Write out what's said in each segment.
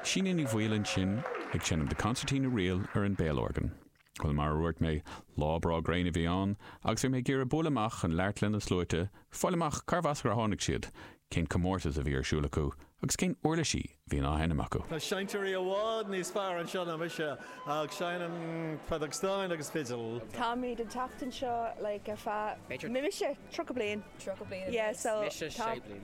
Síne Ní Bhaoill ansin ag seinm The Concertina Reel ar an béalorgan. Bhuel, mar a dhúirt mé, lá breá gréine a bhí ann, agus bhí mé ag iarraidh bualadh amach chun labhairt leis na sluaite, fáil amach cárbh as ar tháinig siad, cén comórtas a bhí ar siúl acu, agus cén uirlisí a bhíonn á sheinm acu. Tá seinnteoirí i bhfad níos fearr anseo ná mise, ach seinnim feadóg stáin agus fidil. Táimid ag teacht anseo like ar feadh, b'fhéidir, mise, tríocha bliain. Tríocha bliain? Yeah, so. Mise, sé bliain.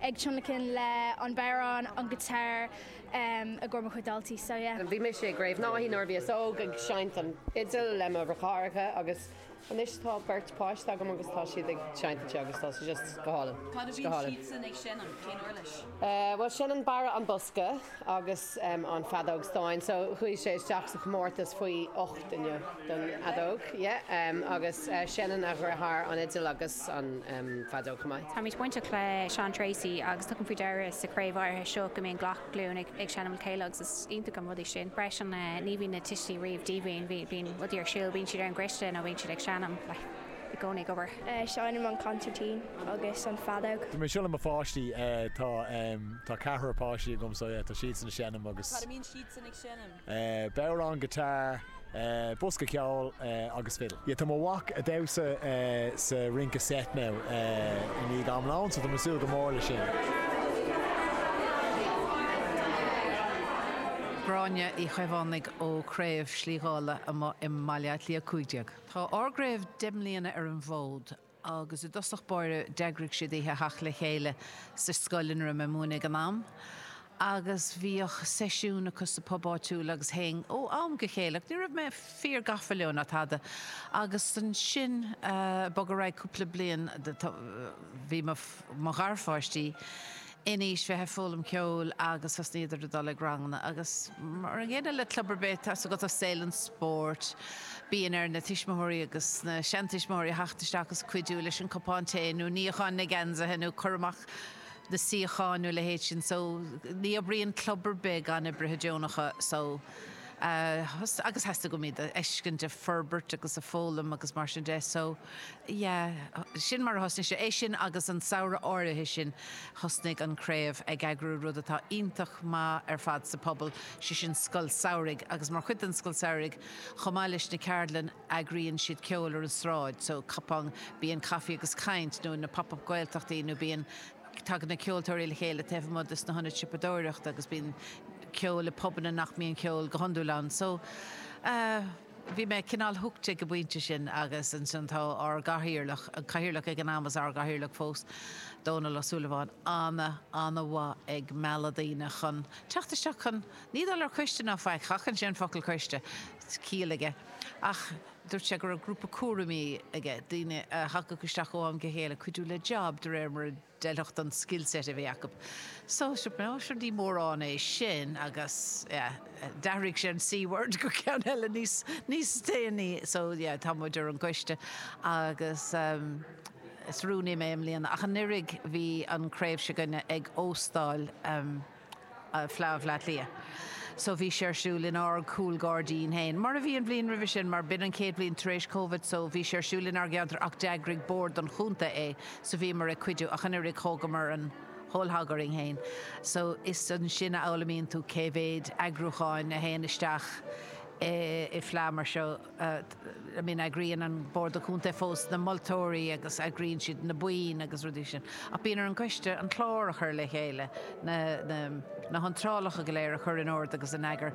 ag tionlacan le an bodhrán, an guitar i gcóir mo chuid daltaí so yeah. Bhí mise i gCraobh Naithí nuair a bhíos óg ag seinnt an fhidil le mo dheartháireacha agus anois tá beirt páiste agam agus tá siad ag seinnt anseo agus tá sé just go hálainn. Cad a bhíonn siadsan ag seinm? Cén uirlis? Bhuel seinneann Barra an bosca. agus an feadóg stáin so chuaigh sé isteach sa chomórtas faoi ocht inniu don fheadóg yeah agus seinneann a dheartháir an fhidil agus an feadóg chomh maith. Táimid bainteach le Seán Treacy agus tugaim faoi deara sa chraobh áirithe seo go mbíonn glac glúin ag ag seinm le chéile agus is iontach an rud é sin freisin ní bhíonn na tuistí riamh díomhaoin bíonn rudaí ar siúl bíonn siad ar an gcoiste nó bíonn siad ag seinm like i gcónaí ag obair. Seinnim an consairtín agus an feadóg. Tá mé ag seinm le mo pháistí. Tá ceathrar páistí agam so tá siadsan ag seinm agus. Cad a bhíonn siadsan ag seinm? Bodhrán, guitar, bosca ceoil agus fiddle. Tá mo mhac ag damhsa sa rince seit now i ndiaidh an lóin so tá mé ag súil go mór leis sin. Gráinne Uí Chaomhánaigh ó Craobh Slí Dhála amuigh i mBaile Átha Cliath 15. Tá ár gcraobh deich mbliana ar an bhfód agus i dtosach báire d'eagraigh siad oíche theacht le chéile sa scoil ina raibh mé ag múineadh ag an am agus bhíodh seisiún acu sa bpub áitiúil agus théinn ó am go chéile ach ní raibh mé fíor gafa leo ná tada agus ansin bog ar aghaidh cúpla bliain bhí mo gharpháistí in aois bheith ag foghlaim ceoil agus thosnaíodar ag dul ag ranganna agus mar an gcéanna le club ar bith atá agat i saol an spóirt bíonn ar na tuismitheoirí agus na seantuismitheoirí a theacht isteach agus cuidiú leis an cupán tae nó níochán na geansaithe nó cur amach na suíocháin nó a leithéid sin so ní oibríonn club ar bith gan oibrithe deonacha so agus theastaigh uaim iad a fheiscint ag forbairt agus ag foghlaim agus mar sin de so. Yeah, sin mar a thosnaigh sé. É sin agus an samhradh áirithe sin thosnaigh an Craobh ag eagrú rud atá iontach maith ar fad sa phobal, sé sin Scoil Samhraidh agus mar chuid den Scoil Samhraidh chomh maith leis na ceardlanna eagraíonn siad ceol ar an sráid, so cupán, bíonn Coffee agus Caint nó na Pop-Up Gaeltachtaí nó bíonn, tagann na ceoltóirí le chéile taobh amuigh de sna hionaid siopadóireachta agus bíonn ceol i bpubanna nach mbíonn ceol go hiondúil ann so eh. Bhí mé cineál hooked ag an bpointe sin agus ansin tá ár gCathaoirleach, an Cathaoirleach ag an am is ár gCathaoirleach fós, Dónal Ó Súilleabháin, ana, ana mhaith ag mealladh daoine chun teacht isteach chun, ní dul ar coiste ná faic, seachnaíonn sé an focal coiste, ciall aige, ach dúirt sé go raibh grúpa cúraimí aige, daoine a thagadh isteach ó am go chéile, cuidiú le jab de réir mar a, d'fheilfeadh don skillset a bhí acu. So sure níor mhórán é sin agus yeah d'athraigh sé an C-word go ceann eile níos níos déanaí so yeah tá muid ar an gcoiste agus ehm is rúnaí mé i mbliana ach anuraidh bhí an craobh se'gainne ag óstáil ehm Fleá Bhleá Cliath. So bhí sé ar siúl in ár gcúl gairdín féin, mar a bhí an bhliain roimhe sin, mar b'in an chéad bhliain tar éis Covid, so bhí sé ar siúl in ár gceantar ach d'eagraigh bord an chontae é, so bhíomar ag cuidiú ach anuraidh, thógamar an whole hog orainn féin. So is ansin a fhoghlaimíonn tú cé mhéid eagrúcháin a théann isteach i bhfleá mar seo. I mean eagraíonn an bord contae fós na moltóirí agus eagraíonn siad na boinn agus rudaí sin ach bíonn ar an gcoiste an clár a chur le chéile, na hiontrálacha go léir a chur in ord agus in eagar,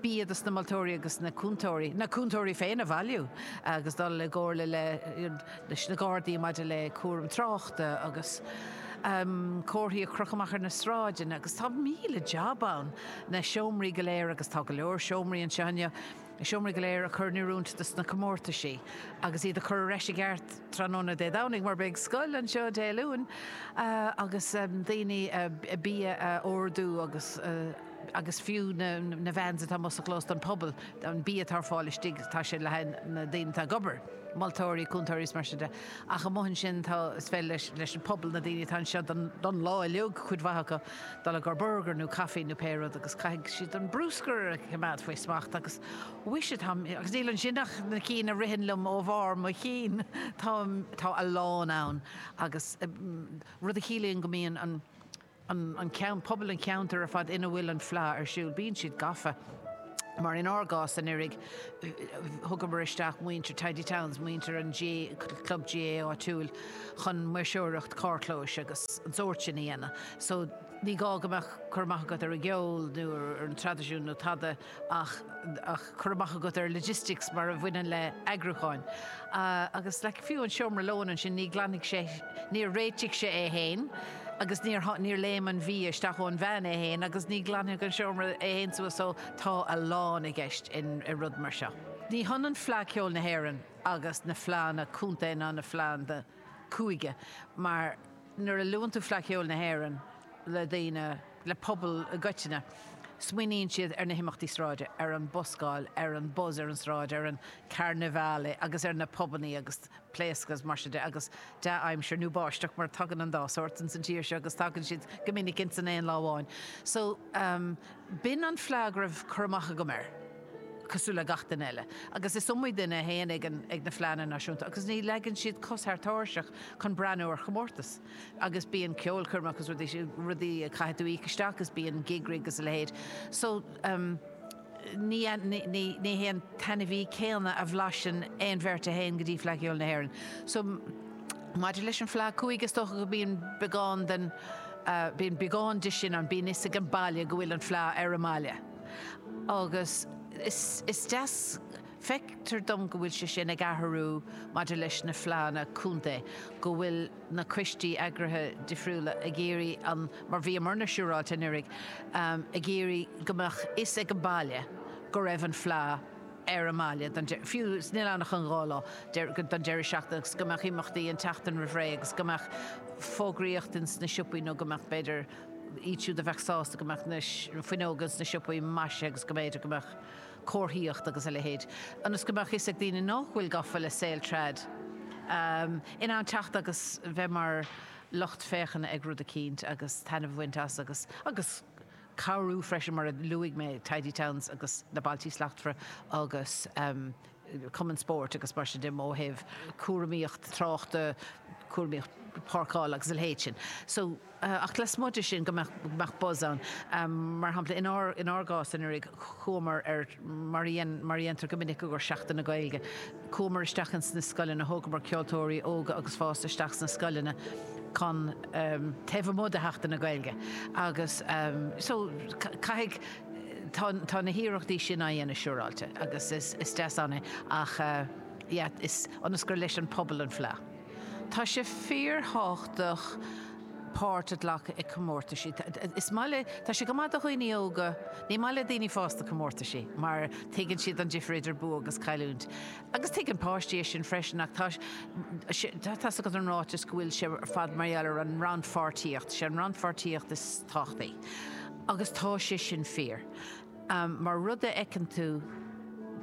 bia do na moltóirí agus na cúntóirí, na cúntóirí féin a bhailiú agus dul i gcomhairle le, you know, leis na Gardaí maidir le cúram tráchta agus ehm comharthaí a chrochadh amach ar na sráideanna agus tá míle jab ann, na seomraí go léir agus tá go leor seomraí anseo inniu. Na seomraí go léir a chur in oiriúint do na comórtaisí agus iad a chur ar ais i gceart tráthnóna Dé Domhnaigh mar beidh scoil anseo Dé Luain agus daoine bia a órdú agus agus fiú na vans atá amuigh sa chlós don phobal an bia atá ar fáil istigh tá sé le haghaidh na daoine atá ag obair, moltóirí, cúntóirí is mar sin de ach amuigh ansin tá is féidir leis an bpobal na daoine atá anseo don lá uiliug cuid mhaith acu. Dul i gcomhair burgar nó caifí nó pé rud agus caithfidh siad an bruscar a choimeád faoi smacht agus mhuise, tá mé, agus níl ansin ach na cinn a ritheann liom ó bharr mo chinn, tá, tá a lán ann agus, rud a chiallaíonn go mbíonn an, an, an ceann, pobal an cheantair ar fad ina bhfuil an fleá ar siúl, bíonn siad gafa. mar in ár gcás anuraidh thugamar isteach muintir Tidy Towns, muintir an chlub GAA áitiúil chun maoirseoireacht carrchlóis agus an sórt sin a dhéanamh so ní gá go mbeadh cur amach agat ar an gceol nó ar an traidisiún nó tada ach cur amach agat ar logistics mar a bhaineann le eagrúcháin agus like fiú an seomra lóin ansin ní ghlanfaidh sé, níor réitigh sé é féin. agus níor, níor léim an mhias isteach sa van é féin agus ní ghlanfaidh an seomra é féin suas so tá a lán i gceist in, i rud mar seo. Ní hionann Fleadh Cheoil na hÉireann agus na fleadhanna contae ná na fleadhanna cúige mar nuair a luann tú Fleadh Cheoil na hÉireann le daoine, le pobal i gcoitinne, smaoiníonn siad ar na himeachtaí sráide, ar an buscáil, ar an buzz ar an tsráid, ar an carnivale agus ar na pubannaí agus. pléascadh, is mar sin de, agus dea-aimsir nó báisteach, mar tagann an dá shórt ins an tír seo agus tagann siad go minic ins an aon lá amháin. So, b'in an fleá go raibh cur amach agam air, cosúil le gach duine eile. Agus is iomaí duine a théann ag an, ag na fleánna náisiúnta agus ní leagann siad cos thar tairseach chun breathnú ar chomórtas. Agus bíonn ceolchoirmeacha agus rudaí, rudaí a gcaithfidh tú íoc isteach agus bíonn gig rig agus a leithéid. So. ní hé an t-ainmhí céanna a bhlaiseann aon bheirt a théann go dtí Fleadh Cheoil na hÉireann so maidir leis an Fleadh cúige is dócha go mbíonn beagán den, bíonn beagán de sin ann, bíonn 'fhios ag an baile go bhfuil an Fleadh ar an mbaile agus is deas. Feictear dom go bhfuil sé sin ag athrú maidir leis na fleánna contae, go bhfuil na coistí eagraithe difriúla ag iarraidh an, mar a bhí muidne siúráilte anuraidh, ag iarraidh go mbeadh fhios ag an baile go raibh an fleá ar an mbaile don, fiú 's nach bhfuil ann ach an dhá lá, don deireadh seachtaine agus go mbeadh imeachtaí an tseachtain roimh ré agus go mbeadh fógraíocht ins na siopaí nó go mbeadh, b'fhéidir, iad siúd a bheadh sásta go mbeadh na fuinneoga ins na siopaí maisithe agus go mb'fhéidir go mbeadh. comharthaíocht agus a leithéid, ionas go mbeadh fhios ag daoine nách bhfuil gafa le saol trad in ann teacht agus bheith mar lucht féachana ag rud eicínt agus taitneamh a bhaint as agus agus cabhrú freisin mar a luaigh mé Tidy Towns agus na Bailtí Slachtmhara agus Cumann Spóirt agus mar sin de ó thaobh cúramaíocht tráchta, cúramaíocht páirceála agus a leithéid sin. So. ach lasmuigh de sin go mbeadh buzz ann. Mar shampla, in ár gcás anuraidh, chuamar ar, mar a dhéantar go minic i gcomhair Seachtain na Gaeilge, chuamar isteach ins na scoileanna, thógamar ceoltóirí óga agus fásta isteach sna scoileanna chun, taobh amuigh de Sheachtain na Gaeilge agus, so, caithfidh, tá na hiarrachtaí sin á dhéanamh siúráilte agus is deas ann iad ach, yeah, is, ionas gur leis an bpobal an fleá. Tá sé fíorthábhachtach páirt a ghlacadh i comórtaisí. Is maith le, tá sé go maith do dhaoine óga, ní maith le daoine fásta comórtaisí mar tuigeann siad an difear idir bua agus cailliúint. Agus tuigeann páistí é sin freisin ach tá sé, tá's agat an ráiteas go bhfuil sé ar fad mar gheall ar an rannpháirtíocht, sé an rannpháirtíocht is tábhachtaí agus tá sé sin fíor. mar rud a fheiceann tú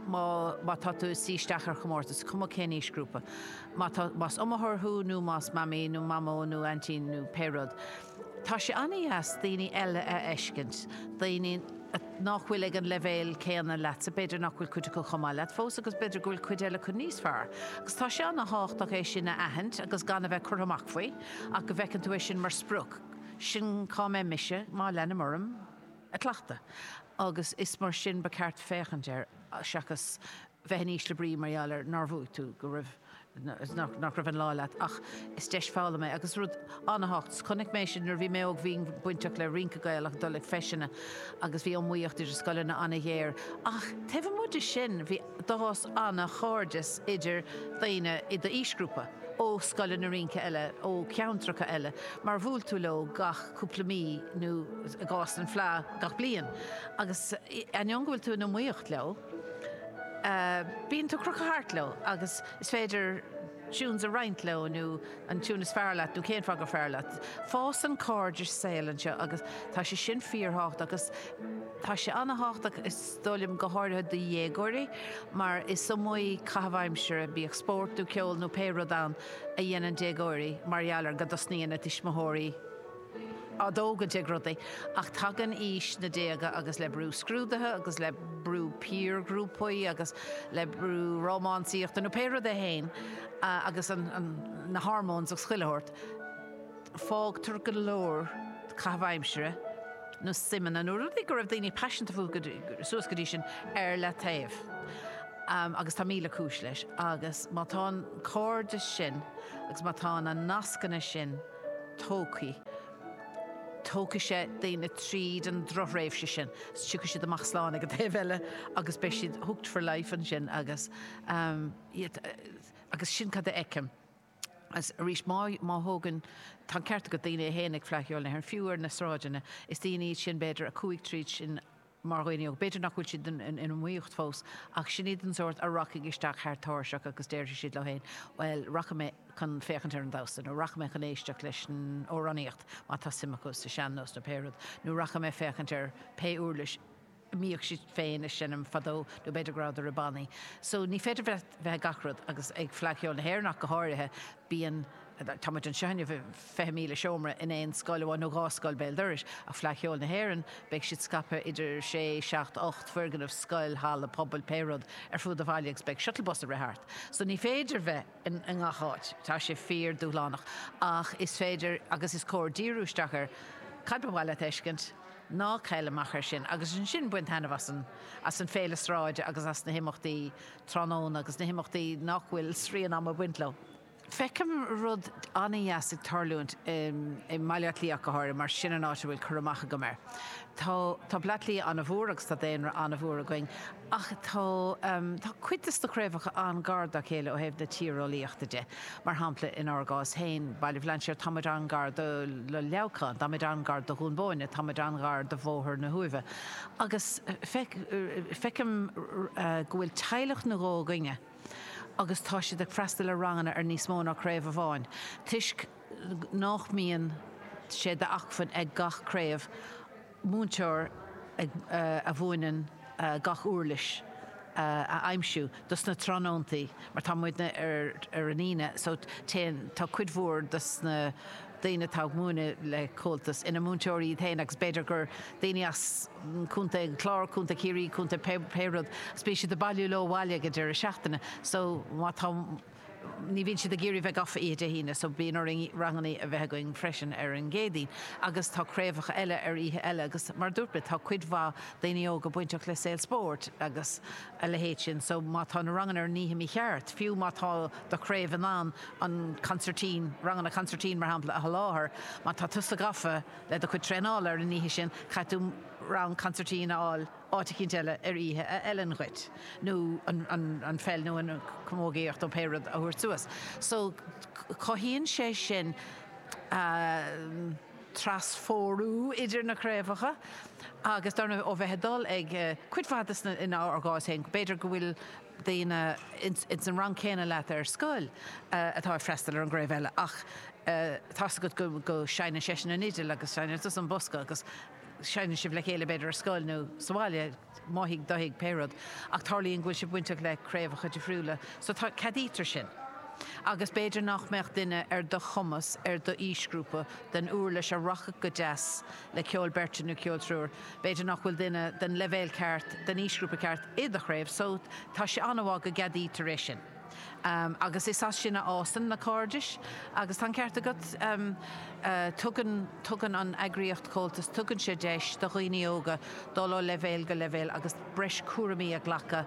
má tá tú ag suí isteach ar chomórtas, is cuma cén aoisghrúpa. Má tá, más iomaitheoir thú nó más mamaí nó mamó nó aintín nó pé rud, tá sé an-deas daoine eile a fheiscint, daoine nach bhfuil ag an leibhéal céanna leatsa, b'fhéidir nach bhfuil cuid acu chomh maith leat fós agus b'fhéidir go bhfuil cuid eile acu níos fearr. Agus tá sé an-thábhachtach é sin a aithint agus gan a bheith curtha amach faoi ach go bhfeiceann tú é sin mar sprioc, sin cá mbeidh mise má leanaim orm. ag cleachtadh, agus is mar sin ba cheart féachaint air seachas bheith in ísle brí mar gheall ar nár bhuaigh tú, go raibh, nach raibh an lá leat. Ach is deis foghlama é, agus rud an-thábhachtach. 'S chonaic mé sin nuair a bhí mé óg, bhínn bainteach le rince Gaelach, dul ag feiseanna, agus bhí iomaíocht idir scoileanna an-ghéar. Ach taobh amuigh de sin, bhí. D'fhás an-chairdeas idir daoine i d'aoisghrúpa ó scoileanna rince eile ó cheantracha eile mar bhuail tú leo gach cúpla mí nó, i gcás an Fhleadh, gach bliain agus, ainneoin go bhfuil tú in iomaíocht leo, bíonn tú ag crochadh thart leo agus is féidir tunes a roinnt leo nó an tune is fearr leat nó cén fáth gur fearr leat. Fásann cairdeas saoil anseo agus tá sé sin fíorthábhachtach agus tá sé an-thábhachtach, a fhoghlaim, go háirithe do dhéagóirí, mar is iomaí caitheamh aimsire, bíodh spórt nó ceol nó pé rud ann, a dhéanann déagóirí mar gheall ar go dtosnaíonn a dtuismitheoirí á dtógaint ag rudaí. Ach tagann aois na déaga agus le brú scrúduithe agus le brú piarghrúpaí agus le brú rómánsaíochta nó pé rud é féin agus na hormones agus chuile shórt, fágtar go leor caitheamh aimsire nó suimeanna, nó rudaí go raibh daoine paiseanta fúthu suas go dtí sin, ar leataobh. Agus tá míle cúis leis. Agus má tá an cairdeas sin agus má tá na nascanna sin tógtha, tógfaidh sé daoine tríd an drochthréimhse sin. Tiocfaidh siad amach slán ag an taobh eile agus beidh siad hooked for life ansin agus, you know, agus sin cad a fheicim. Arís, má thógann, tá an ceart agat, daoine é féin ag Fleadh Cheoil na hÉireann, fiú ar na sráideanna, is daoine iad sin, b'fhéidir, a chuaigh tríd sin mar dhaoine óga. B'fhéidir nach bhfuil siad in iomaíocht fós ach sin iad den sórt a rachaidh isteach thar táirseach agus déarfaidh siad leo féin, bhuel, rachaidh mé chun féachaint ar an damhsa nó rachaidh mé chun éisteacht leis an amhránaíocht má tá suim acu sa sean-nós nó pé rud, nó rachaidh mé féachaint ar pé úirlis mbíodh siad féin ag seinm fadó nó b'fhéidir go rabhadar i bannaí so ní féidir bheith ag gach rud agus ag Fleadh Cheoil na hÉireann ach go háirithe bíonn tá muid anseo inniu i fiche míle seomra in aon scoil amháin nó dhá scoil béal dorais ach Fleadh Cheoil na hÉireann beidh siad scaipthe idir sé, seacht, ocht foirgneamh, scoil, halla pobail, pé rud ar fuaid an bhaile agus beidh shuttle bus ag rith thart so ní féidir bheith. i ngach áit. Tá sé fíor dúshlánach ach is féidir agus is cóir díriú isteach ar cad ba mhaith leat a fheiscint. Ná caill amach ar sin agus ansin bain taitneamh as an as an Féile Sráide agus as na himeachtaí tráthnóna agus na himeachtaí nach bhfuil srian ama ag baint leo. Feicim rud an-deas ag tarlúint i mBaile Átha Cliath go háirithe mar is sin an áit a bhfuil cur amach agam air. Tá Baile Átha Cliath an-mhór agus tá daonra an-mhór againn. ach tá cuid de na craobhacha an-ghar dá chéile ó thaobh na tíreolaíochta de. Mar shampla, inár gcás féin, Baile Bhlainséir, tá muid an-ghar do Leamhcán, tá muid an-ghar do Dhún Bóinne, tá muid an-ghar do Bhóthar na hUaimhe, agus feicim go bhfuil teaghlach nó dhó againne agus tá siad ag freastal ar ranganna ar níos mó ná craobh amháin, toisc nach mbíonn sé d'acmhainn ag gach craobh, múinteoir a mhúineann gach úirlis a aimsiú dos na tráthnóntaí mar tá muidne ar an Aoine so then, tá cuid mhór dos na daoine atá ag múineadh le Comhaltas ina múinteoirí iad féin agus b'fhéidir gur daoine as Contae an Chláir, Contae Chiarraí, Contae pé rud agus bíonn siad ag bailiú leo abhaile ag an deireadh seachtaine so má tá. ní bhíonn siad ag iarraidh bheith gafa oíche Dé hAoine so bíonn orainn ranganna a bheith againn freisin ar an gCéadaoin agus tá craobhacha eile ar oíche eile agus mar a dúirt mé tá cuid mhaith daoine óga bainteach le saol spóirt agus a leithéid sin so má tá na ranganna ar an oíche mícheart fiú má tá do chraobh in ann an consairtín ranganna consairtín mar shampla a sholáthar má tá tusa gafa le do chuid traenála ar an oíche sin caithfidh tú rang consairtín a fháil áit eicínt eile ar oíche a fheileann dhuit, nó an pheil nó an chamógaíocht nó pé rud a thabhairt suas. So, cothaíonn sé sin trasphórú idir na craobhacha agus dar ndóigh ó bheith ag dul ag cuid mhaith des na, in ár gcás féin, b'fhéidir go bhfuil daoine ins an rang céanna leat ar scoil atá ag freastal ar an gcraobh eile ach tá 's agat go seinneann seisean an fhidil agus seinneann tusa an bosca agus seinneann sibh le chéile, b'fhéidir ar scoil nó sa bhaile, amuigh faoin tuath, pé rud, ach tarlaíonn go bhfuil sibh bainteach le craobhacha difriúla, so tá, ceadaítear sin. Agus b'fhéidir nach mbeadh duine ar do chumas, ar d'aoisghrúpa, den uirlis a rachadh go deas le ceol beirte nó ceol triúir, b'fhéidir nach bhfuil duine den leibhéal ceart, den aoisghrúpa ceart, i do chraobh, so tá sé an-mhaith go gceadaítear é sin. Um, agus is as sin a fhásann na cairdis agus tá an ceart agat, um, uh, tugann, tugann an eagraíocht Comhaltas, tugann sé deis do dhaoine óga dul ó leibhéal go leibhéal agus breis cúraimí a ghlacadh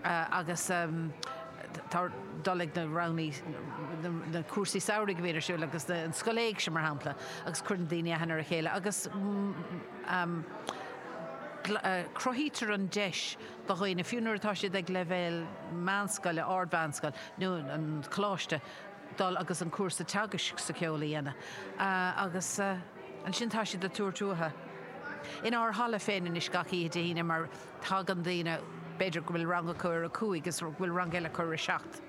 uh, agus um, ag dul chuig na rannaí na, na cúrsaí samhraidh a bhíonn ar siúl agus na, an scoil éigse mar shampla agus cuireann daoine aithne ar a chéile agus mm, um, uh, cruthaítear an deis do dhaoine, fiú nuair atá siad ag leibhéal meánscoile, ardmheánscoil nó an choláiste, dul agus an cúrsa teagaisc sa cheol a dhéanamh agus ansin tá siad ag tabhairt uathu inár halla féin anois gach oíche Dé hAoine mar tagann daoine, b'fhéidir go bhfuil rang acu ar a cúig agus go bhfuil rang eile acu ar a seacht.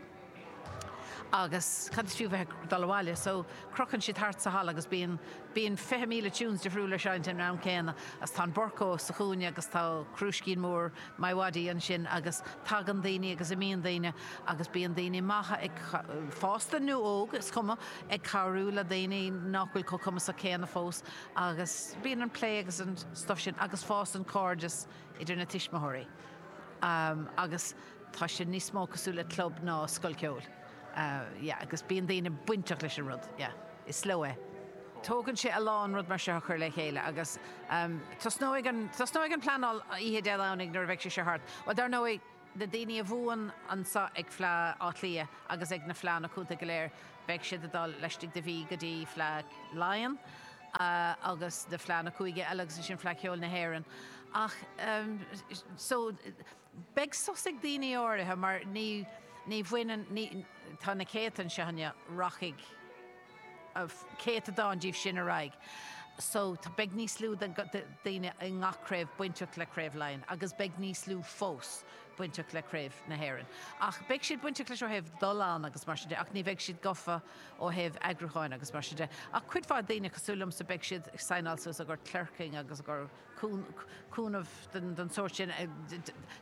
agus cad is fiú bheith ag dul abhaile so crochann siad thart sa halla agus bíonn bíonn fiche míle tunes difriúla á seinnt an am céanna agus tá an Burco sa chúinne agus tá crúiscín mór MiWadi ansin agus tagann daoine agus imíonn daoine agus bíonn daoine maithe ag fásta nó óg is cuma ag cabhrú le daoine nach bhfuil chomh cumasach céanna fós agus bíonn an plé agus an stuff sin agus fásann cairdeas idir na tuismitheoirí agus. Tá sé níos mó cosúil le club ná scoil ceoil. Yeah, agus bíonn daoine bainteach leis an rud. Yeah. Is leo é. Tógann sé a lán rud mar seo a chur le chéile agus tosnóidh an, tosnóidh an pleanáil oíche Dé Domhnaigh nuair a bheidh sé seo thart. Bhuel, dar ndóigh, na daoine a bhuann anseo ag Fleá Átha Cliath agus ag na fleánna contae go léir, beidh siad ag dul laistigh de mhí go dtí Fleá Laighean agus na fleánna cúige eile agus ansin Fleá Cheoil na hÉireann. Ach, eh, so, Beidh sos ag daoine áirithe mar ní, ní bhaineann, ní, tá na céadta anseo inniu, rachaidh céatadán díobh sin ar aghaidh so beidh níos lú de dhaoine i ngach craobh bainteach le Craobh Laighean agus beidh níos lú fós bainteach le Craobh na hÉireann ach beidh siad bainteach leis ó thaobh dul ann agus mar sin de ach ní bheidh siad gafa ó thaobh eagrúcháin agus mar sin de ach cuid mhaith daoine cosúil liomsa beidh siad ag saighneáil suas i gcomhair clerking agus i gcomhair cúnamh den tsórt sin.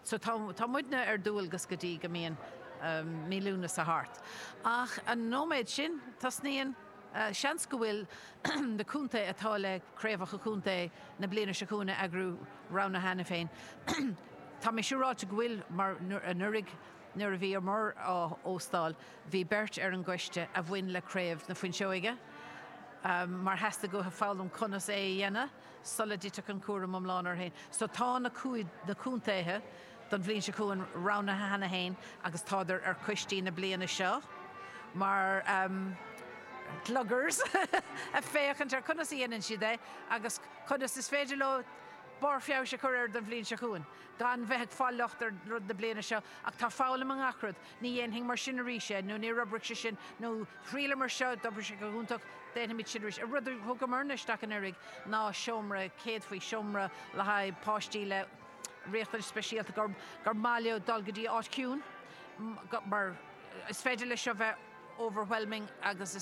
So tá muidne ar dualgas go dtí go mbíonn mí Lúnasa thart. Ach an nóiméad sin, tosnaíonn, seans go bhfuil na contae atá le craobhacha contae na bliana seo chugainn a eagrú roghnaithe cheana féin. Tá mé siúráilte go bhfuil mar anuraidh nuair a bhíomar á óstáil, bhí beirt ar an gcoiste a bhain le Craobh na Fuinseoige mar theastaigh uathu foghlaim conas é a dhéanamh. sula dtitfeadh an cúram iomlán orthu féin. So tá na cúig, na contaetha don bhliain seo chugainn roghnaithe cheana féin agus tádar ar coistí na bliana seo mar ehm gluggers a' féachaint ar conas a dhéanann siad é agus conas is féidir leo barr feabhais a chur air don bhliain seo chugainn gan bheith ag fáil locht ar rud na bliana seo ach tá foghlaim i ngach rud. Ní dhéanfainn mar sin arís é, nó níor oibrigh sé sin, nó thriaileamar seo, d'oibrigh sé go hiontach, déanfaimid sin arís. An rud a thugamarna isteach anuraidh ná seomra céadfaí, seomra le haghaidh páistí le riachtanais speisialta, gur gur maith leo dul go dtí áit ciúin, mar is féidir leis seo bheith overwhelming agus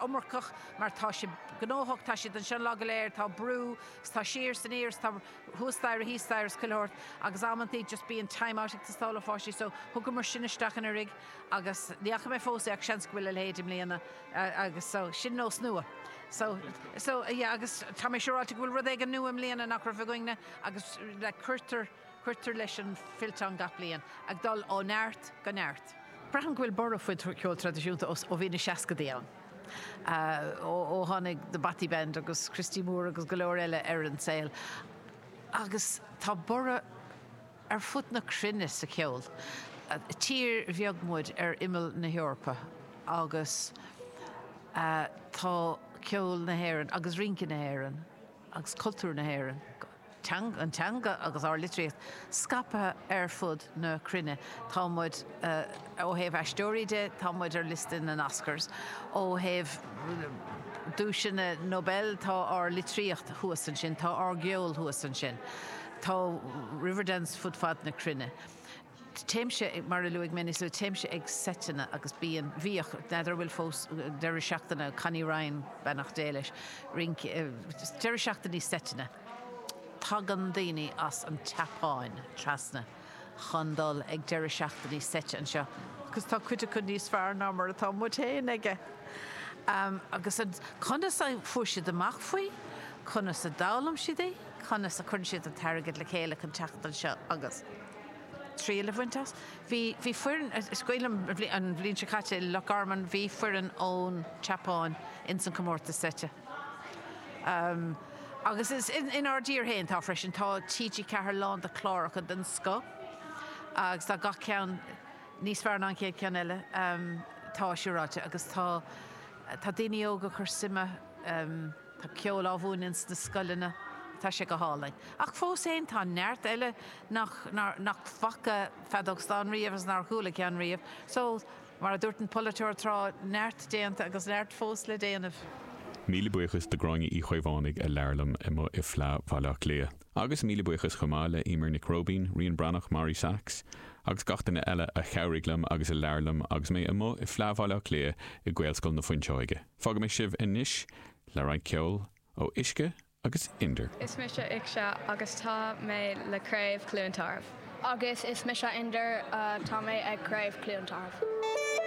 iomarcach, mar tá sé gnóthach, tá siad anseo an lá go léir, tá brú, 's tá siar san aer, 's tá hústars, híostars, chuile shórt agus amanntaí just bíonn time out ag teastáil ó pháistí so thugamar sin isteach anuraidh agus ní fhaca mé fós é ach seans go bhfuil a leithéid i mbliana agus so sin nós nua. So, so, yeah agus tá mé siúráilte go bhfuil rud éigin nua i mbliana nach raibh againn-ne agus like cuirtear, cuirtear leis an fillteán gach bliain, ag dul ó neart go neart. Braithim go bhfuil borradh faoin cheol traidisiúnta ó bhí na seascadaí ann. ó tháinig The Bothy Band agus Christy Moore agus go leor eile ar an saol agus tá borradh ar fud na cruinne sa cheol. Tír bheag muid ar imeall na hEorpa agus tá ceol na hÉireann agus rince na hÉireann agus cultúr na hÉireann go. an teanga agus ár litríocht scaipthe ar fud na cruinne. Tá muid, ó thaobh aisteoirí de, tá muid ar liosta na nOscars. Ó thaobh duaiseanna Nobel, tá ár litríocht thuas ansin, tá ár gceol thuas ansin. Tá Riverdance fud fad na cruinne. téimse, mar a luaigh mé níos luaithe, téimse ag seiteanna agus bíonn, bhíodh, n'fheadar an bhfuil fós, deireadh seachtaine, Connie Ryan, beannacht Dé leis, rince, deireadh seachtainí seiteanna, tagann daoine as an tSeapáin trasna chun dul ag deireadh seachtainí seite anseo agus tá cuid acu níos fearr ná mar atá muid féin aige. Agus an, conas a fuair siad amach faoi, conas a d'fhoghlaim siad í, conas a cuireann siad an t-airgead le chéile chun teacht anseo agus. triail a bhaint as. Bhí, bhí foireann, is cuimhin liom an bhliain, an bhliain seo caite i Loch Garman, bhí foireann ón tSeapáin in san comórtas seite. Ehm, agus is in, in ár dtír féin tá freisin, tá TG4 lán de chláracha den scoth agus tá gach ceann níos fearr ná an chéad ceann eile, ehm, tá, siúráilte agus tá, tá daoine óga chur suime, ehm, Tá ceol á mhúineadh ins na scoileanna, tá sé go hálainn. Ach fós fhéin, tá neart eile nach, nár, nach bhfaca feadóg stáin riamh agus nár chuala ceann riamh. So, mar a dúirt an polaiteoir tráth, neart déanta agus neart fós le déanamh. Míle buíochas do Gráinne Uí Chaomhánaigh a labhair liom amuigh i Fleá Bhaile Átha Cliath. Agus míle buíochas chomh maith le Emer Nic Róibín, Rían Breathnach, Màiri Sachs agus gach duine eile a chabhraigh liom agus a labhair liom agus mé amuigh i Fleá Bhaile Átha Cliath i Gaelscoil na Fuinseoige. Fágfaidh mé sibh anois le roinnt ceoil ó Uisce agus Indr. Is mise Uisce agus tá mé le Craobh Chluain Tarbh. Agus is mise Indr, tá mé ag Craobh Chluain Tarbh.